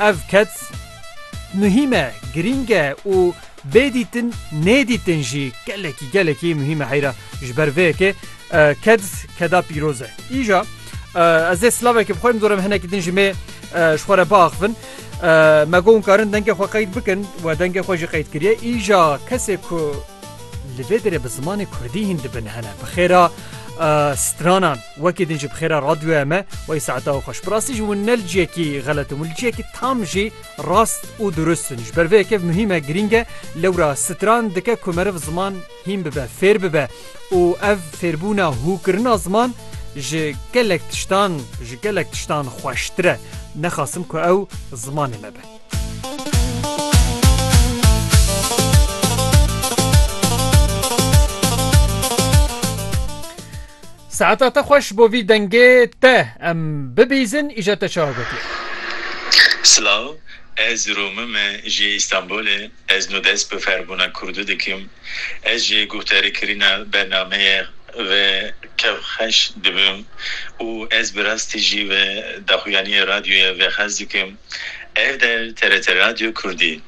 Ev keç muhîm e, girîng e û bê dîtin nêdîtin jî gelekî gelekî muhîm e heyra ji ber vê yekê keç keda pîroz e. Îja ez ê silavekê bi xwe em zorim hinekî din ji me ji xwe re biaxivin. Me got karin dengê xwe qeyd bikin we dengê xwe jî qeyd kiriye îja kesê ku li vê derê bi zimanê kurdî hîn dibin hene bi xêra stranan. Wekî din ji bi xêra radyoya me wey saeta û xweş. Bi rastî jî hûn ne li ciyekî xelet in, hûn li ciyekî tam jî rast û durust in. Ji ber vê yekê muhîm e, girîng e, lewra stran dike ku meriv ziman hîn bibe, fêr bibe û ev fêrbûna hû kirina ziman ji gelek tiştan, ji gelek tiştan xweştir e. Nexasim ku ew zimanê me be. Saeta te xweş bo vî dengê te em bibîzin îja te çawa gotiye. Silav ez Romim e jê Îstanbulê ez no dest bi ferbûna kurdî dikim ez jê guhdarîkirîna bernameyê ve kev xeş dibim û ez bi rastî jî ve daxuyaniyê radyoye ve xez dikim ev der TRT Radyo Kurdî.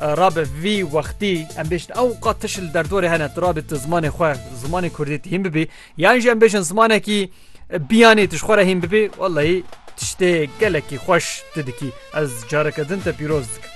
Rabe vî wextî em bêjin ew qat tiş li derdorê hene tu rabê tu zimanê xwe zimanê Kurdî tu hîn bibî yan jî em bêjin zimanekî biyanê tu ji xwe re hîn bibî wellahî tiştê gelekî xweş tu dikî ez careke din te pîroz dikim.